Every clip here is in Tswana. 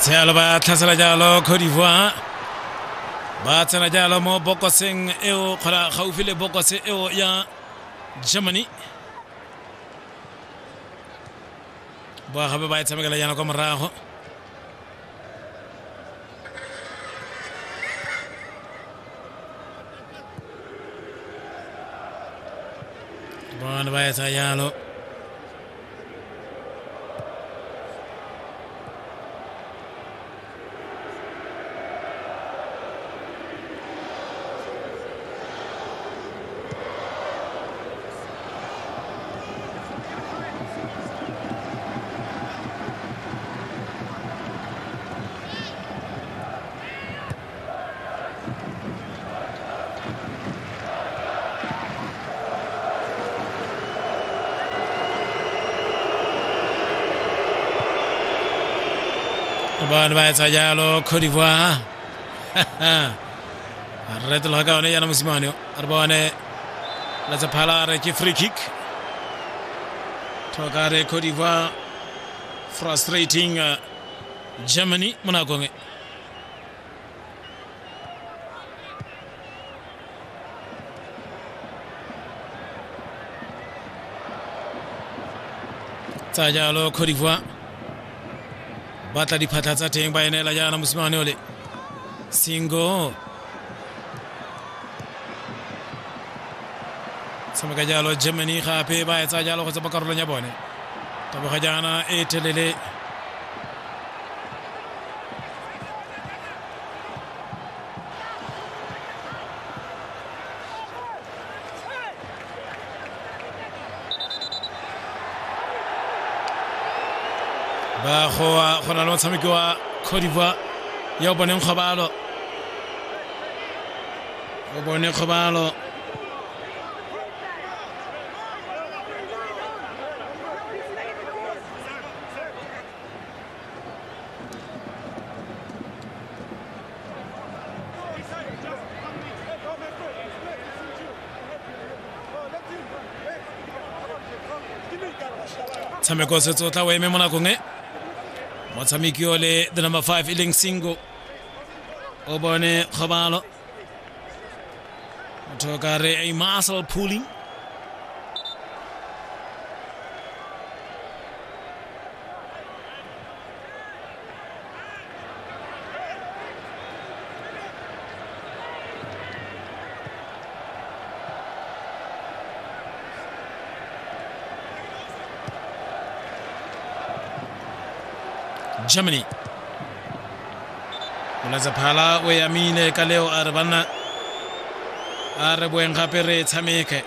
tshealo ba tlhasela jalo cote d'ivoire ba tsena jalo mo bokoseng eo kgona gaufi le bokose eo ya germany boa gape ba e tshamekela jana kwa morago Bon, Baye Sa Diallo. bone ba etsa jalo cote d'ivoire re tloga ka one yana mosimane yo a re bone letsephala re ke free kick tlhoka re cote d'ivoire frustrating uh, Germany muna gome tsa jalo Cote d'Ivoire batla diphatlha tsa teng ba e neela jaana mosimane ole singo tshameka jalo germany gape ba etsa jalo go tsa karolong ya bone taboga jaana e telele ba go go na le motshameki wa Cote d'Ivoire ya o boneng kgobalo o bone kgobalo tshameko setse o tla o eme mo nakong e motshameki o le the number five e leng singo o bone kgobalo motho ka re a muscle pulling germany molatsaphala o yamile ka leo a re banna a re boeng gape re tshameke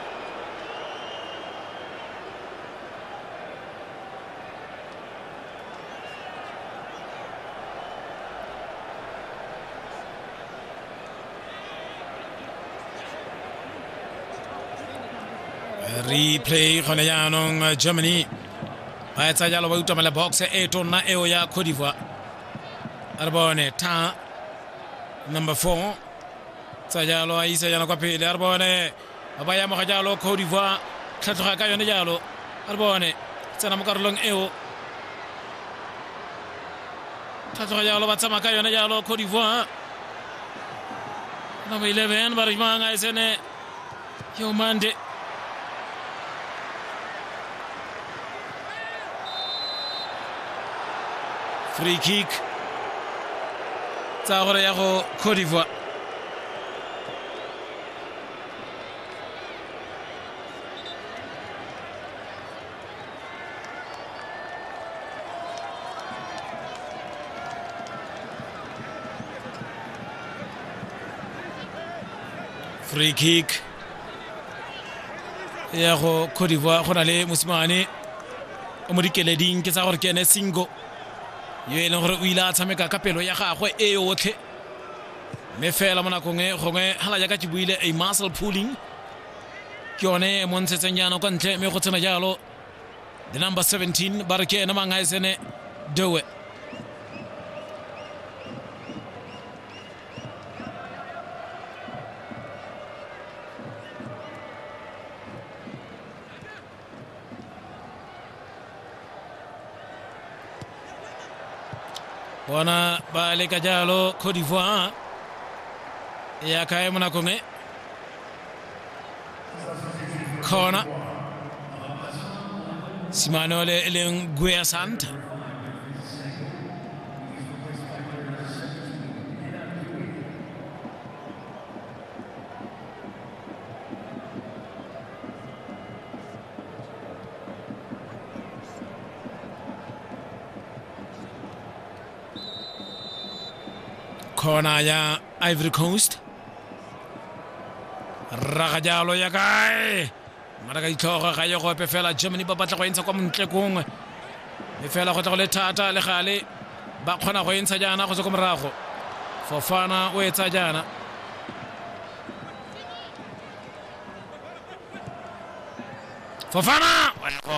replay gone jaanong uh, germany ba etsa jalo ba utamela box e tonna eo ya cote d'ivoire a re bone ta number four tsa jalo a isa jana kwa pele a re bone ba ba yamoga jalo cote d'ivoire tlhatlhoga ka yone jalo a re bone tsena mo karolong eo tlhatlhoga jalo ba tsamaya ka yone jalo cote d'ivoire number 11 ba re mang a e tsene yo mande free kick tsa gore ya go cote d'ivoire free kick ya go cote d'ivoire go na le mosimane o mo dikeleding ke tsa gore ke ene singo yo e leng gore o ile a tshameka ka pelo ya gagwe e yotlhe mme fela mo nakong e gongwe hala jaaka ke buile a muscle pooling ke yone e mo ntshetseng jaanong kwa ntle mme go tsena jalo the number 17 ba re ke ene mang a e sene doe bona ba leka jalo cote d'ivoire ya kae mo nakong e kgona simane ole e leng guea santa kona ya ivory coast raga jalo ya kae ngwana ka ditlhogo ga ye gope fela germany ba batla go e ntsha kwa montle kongwe mme fela go tla go le thata le gale ba kgona go e ntsha jaana go tswa ko morago fofana o etsa jaana fofana wa ya go